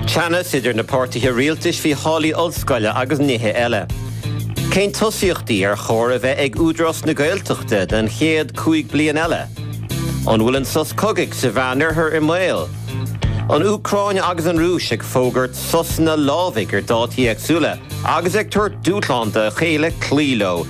Teannas idir na páirtithe rialtais faoi tháillí ollscoile agus nithe eile. Cén tosaíochtaí ar chóir a bheith ag Údarás na Gaeltachta don chéad cúig bliain eile? An bhfuil an sos cogaidh sa Mheánoirthear i mbaol? An Úcráin agus an Rúis ag fógairt sosanna lámhaigh ar dátaí éagsúla agus ag tabhairt dúshlán dá chéile cloí leo.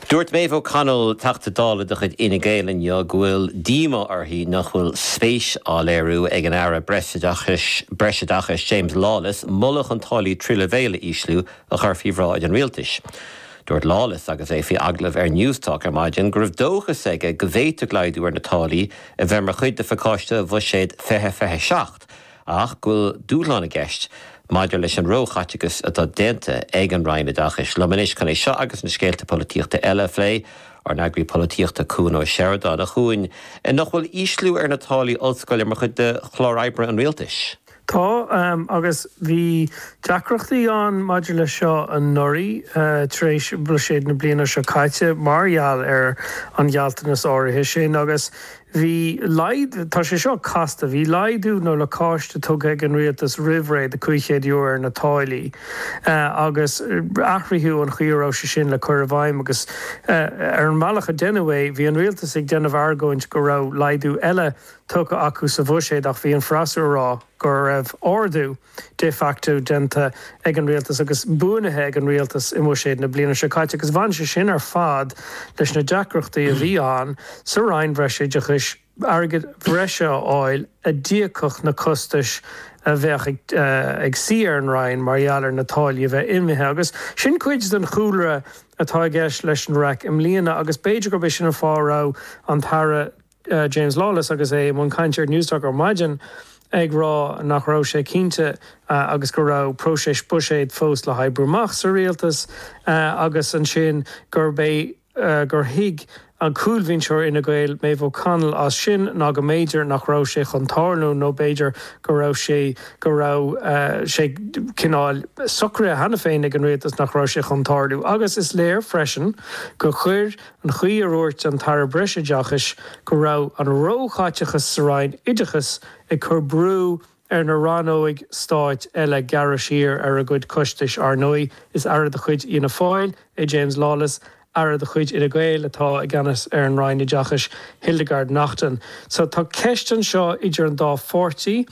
Dúirt Maeve O'Connell, Teachta Dála de chuid Fhine Gael inniu go bhfuil díomá uirthi nach bhfuil spéis á léiriú ag an Aire Breisoideachais James Lawless moladh chun táillí tríú leibhéal a ísliú a chur faoi bhráid an Rialtais. Dúirt Lawless agus é faoi agallamh ar Newstalk ar maidin go raibh dóchas aige go bhféadfadh laghdú ar na táillí a bheith mar chuid de phacáiste Bhuiséad 2027, ach go bhfuil dúshlán i gceist maidir leis an róchaiteachas atá déanta ag an Roinn Oideachais. Liom anois chun é seo agus na scéalta polaitíochta eile a phlé, ár n-eagarthóir polaitíochta Cuan Ó Seireadáin, A Chuain, nach bhfuil ísliú ar na táillí ollscoile mar chuid de chlár oibre an rialtais? Tá, agus bhí deacrachtaí ann maidir leis seo anuraidh tar éis bhuiséid na bliana seo caite mar gheall ar an ghealltanas áirithe sin agus Bhí laghdú, tá sé seo casta, bhí laghdú nó lacáiste tugtha ag an rialtas roimh ré de €500 ar na táillí agus athraíodh an chaoi a raibh sé sin le cur i bhfeidhm agus ar an mbealach a deineadh é bhí an rialtas ag déanamh argóint go raibh laghdú eile tugtha acu sa bhuiséad ach bhí an freasúra ag rá go raibh ardú de facto déanta ag an rialtas agus buanaithe ag an rialtas i mBuiséad na bliana seo caite agus bhain sé sin ar fad leis na deacrachtaí a bhí ann sa Roinn Bhreisoideachais airgead bhreise a fháil a d'íocfadh na costais a bheadh ag suí ar an Roinn mar gheall ar na táillí a bheith imithe agus sin cuid den chúlra atá i gceist leis an raic i mbliana agus b'fhéidir gurb é sin an fáth a raibh an tAire James Lawless agus é i mbun cainte ar Newstalk ar maidin ag rá nach raibh sé cinnte agus go raibh próiseas buiséid fós le hoibriú amach sa rialtas agus ansin gurb é gur thuig an cúlbhinseoir Fhine Gael Maeve O'Connell as sin ná go mb'fhéidir nach raibh sé chun tarlú nó b'fhéidir go raibh sé go raibh sé cineál socraithe cheana féin ag an rialtas nach raibh sé chun tarlú agus is léir freisin gur chuir an chaoi a ndúirt an tAire Breisoideachais go raibh an róchaiteachas sa Roinn Oideachais ag cur brú ar na rannóga stáit eile gearradh siar ar a gcuid costais. Ar ndóigh, is aire de chuid Fhianna Fáil é James Lawless, aire de chuid Fhine Gael atá i gceannas ar an Roinn Oideachais, Hildegarde Naughton. So tá ceist anseo idir an dá pháirtí,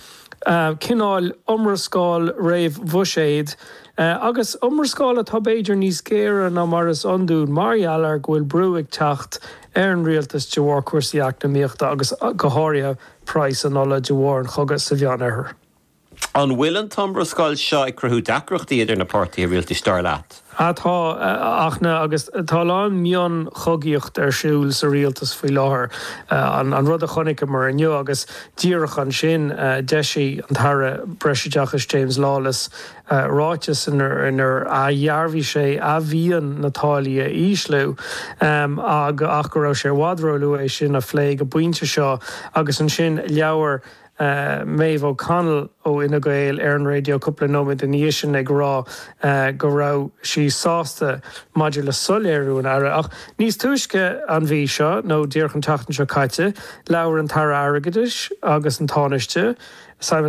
cineál iomrascáil réamhbhuiséid. agus iomrascáil atá b'fhéidir níos géire ná mar is iondúil mar gheall ar go bhfuil brú ag teacht ar an rialtas de bharr cúrsaí eacnamaíochta agus go háirithe praghas an ola de bharr an chogaidh sa Mheánoirthear. An bhfuil an t-iomrascáil seo ag cruthú deacrachtaí idir na páirtithe rialtais, dar leat? Tá, ach na, agus tá a lán mionchogaíocht ar siúl sa rialtas faoi láthair. An rud a chonaiceamar inniu, agus díreach ansin, d'eisigh an tAire Breisoideachais James Lawless, ráiteas inar dhearbhaigh sé a mhian na táillí a ísliú ach go raibh sé i bhfad róluath é sin a phlé ag an bpointe seo agus ansin labhair Maeve O'Connell ó Fhine Gael ar an raidió cúpla nóiméad ina dhiaidh sin ag rá go raibh sí sásta maidir le soiléiriú an Aire. Ach níos túisce an mhí seo, nó díreach an tseachtain seo caite, labhair an tAire Airgeadais agus an Tánaiste, Simon.